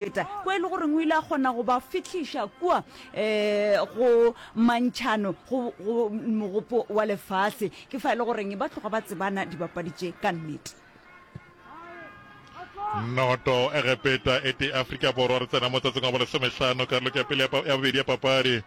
feta kwa e le goreng o ile a kgona go ba fihliša kua um go mantšhano go mogopo wa lefase ke fa e le goreng ba tloga ba tsebana dibapadi tše ka nnete noto egepeta e tee afrika borwa re tsena mo tsatsing wa bolesomehlano karoloko ya pele ya bobedi ya papadi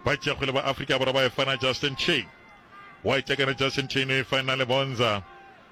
ba tšegole ba afrika borwa ba e fana justin chain wa itšakana justin chain o e fana le bonza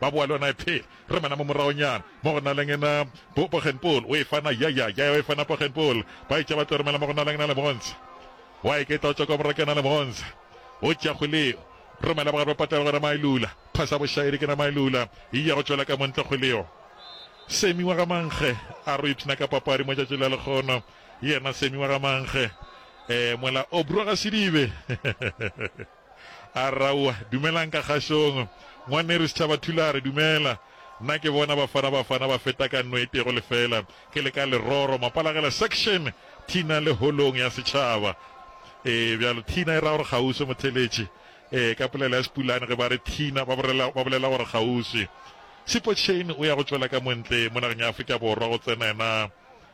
ba boa le yona e phela. Re mena mo moragonyana mo go Naleng ena bo Pogenpool o e fana ya ya ya ya o e fana Pogenpool ba etša ba tlo romela mo go Naleng na le Monza wa e keta o tšwa kwa morake na le Monza o tša kgoleo romela bogare ba patela gona Mailula phasa bošaedi ke na Mailula e ya go tšwela ka montle kgoleo Semi wa ga Mankge a re o ipshina ka papadi mo tšatši la lekgono yena Semi wa ga Mankge eh mola o brwa ga Sedibe A re, Aowa, dumelang ka kgašong. Ngwaneru Setšhaba Thulare, dumela. Nna ke bona Bafana Bafana ba feta ka nno e tego lefela. Ke le ka Leroro, Mapalagela Section. Thina le Holong ya Setšhaba. Ee, bjalo. Thina e ra gore kgauswi, Motheletši. Ee, ka polelo ya Sepulane, ge ba re thina, ba bolela, ba bolela gore kgauswi. Sipho Chain o ya go tšwela ka mo ntle, mo nageng ya Afrika Borwa, go tsena yena,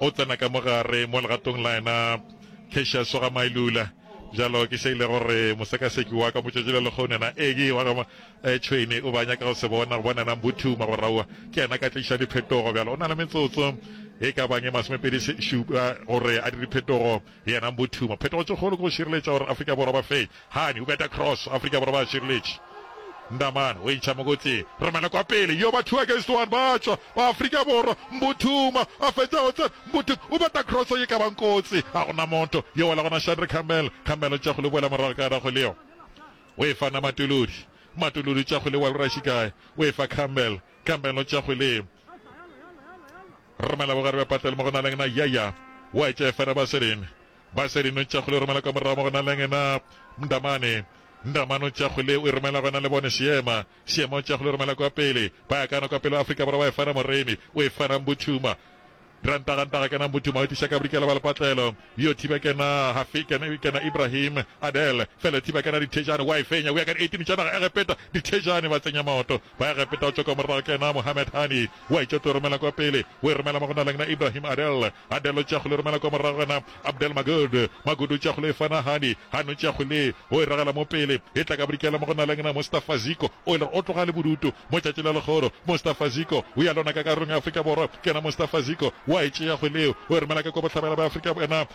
o tsena ka mo gare mo legatong la yena Cassius wa ga Mailula bjalo ke se ile gore mosekaseki wa ka motšatši le lekgone na egi wa ga eh, tšhwene o banya ka go se bona go bona na mbuthu magoraua ke yena ka tliša diphetogo bjalo o na le metsotso e ka bang e masomepedi šupa gore a dire phetogo Le yena Mbotuma. Phetogo tše kgolo ke go šireletša gore Afrika Borwa ba fenye. Hani, o beta cross, Afrika Borwa ba šireletše. Ndamane, o e ntšha mokotseng. Romela kwa pele. Yo, ba two against one, ba tšwa ba Afrika Borwa. Mbotuma a fetša go tsena. Mbotuma o beta cross ye ka bang kotsi. Ga go na motho. Yo wela gona Shadri Khamel. Khamel o tša go le boela morago ka dago leo. O e fa na Matuludi. Matuludi o tša go le boela o raši kae. O e fa Khamel. Khamel o tša go le. Re romela bogare bja patlelo mo go na lengna, ya ya wa etša efera ba se rene. Ba se rene o ntša kgole o romela ka morago mo go na lengna, Mndamane. Mndamane o ntša kgole o e romela go na le bone, Seema. Seema o ntša kgole o romela kwa pele, ba ya kano kwa pele wa Afrika Borwa wa efera moremi, o efera Mbuthuma. Rantagantaga kena Mbuthuma o e tliša ka bodikela bwa lepatlelo, yo thiba kena Hafi, kena, kena Ibrahim, Adel, fela thiba kena Dithejane wa e fenya, o ya ka di 18 tša naga Egepeta, Dithejane ba tsenya maoto, Ba ya Gepeta go tšwa kwa morago ke yena Mohamed Hani. O a itšwa tlo romela kwa pele. O e romela mo go na leng na Ibrahim Adel. Adel o tšea kgole o romela kwa morago go yena Abdel Magud. Magud o tšea kgole o e fa na Hani. Hani o tšea kgole ye o e ragela mo pele. E tla ka bodikela mo go na leng na Mustafa Ziko. O e le gore o tloga a le bodutu mo tšatši la legoro. Mustafa Ziko o ya lona ka karolong ya Afrika Borwa ke yena Mustafa Ziko. O a e tšea kgole yeo o e romela ka kwa bohlabela bja Afrika yena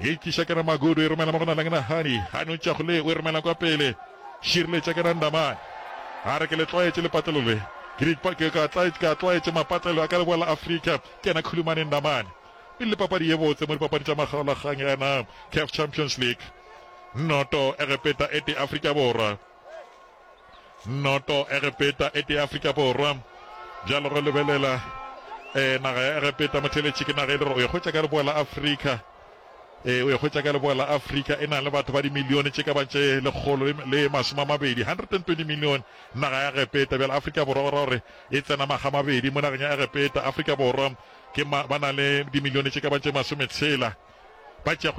E tliša ke re Magudu e romela mo go Naleng Nahani a no tšago le o e romela kwa pele Šireletša ke re Ndamane a re ke le tlwaetše lepatlelo le ke di ke ka tlaetše ka tlwaetše mapatlelo a ka leboa la Afrika ke yena Khulumane Ndamane e le papadi ye botse mo dipapadi tša makgaolakgang ya na CAF Champions League noto Egepeta e te Afrika Borwa Noto Egepeta e tee Afrika Borwa bjalo go lebelela e naga ya Egepeta motheletši ke naga e le gore o e hwetša ka leboa la Afrika e o e hwetša ka leboa la Afrika e na le batho ba dimilione tše ka ba tše lekgolo le masome a mabedi 120 million naga ya Egepeta bjale Afrika Borwa go ra gore e tsena maga mabedi mo nageng ya Egepeta Afrika Borwa ke ba na le dimilione tše ka ba tše masome tshela ba tšeago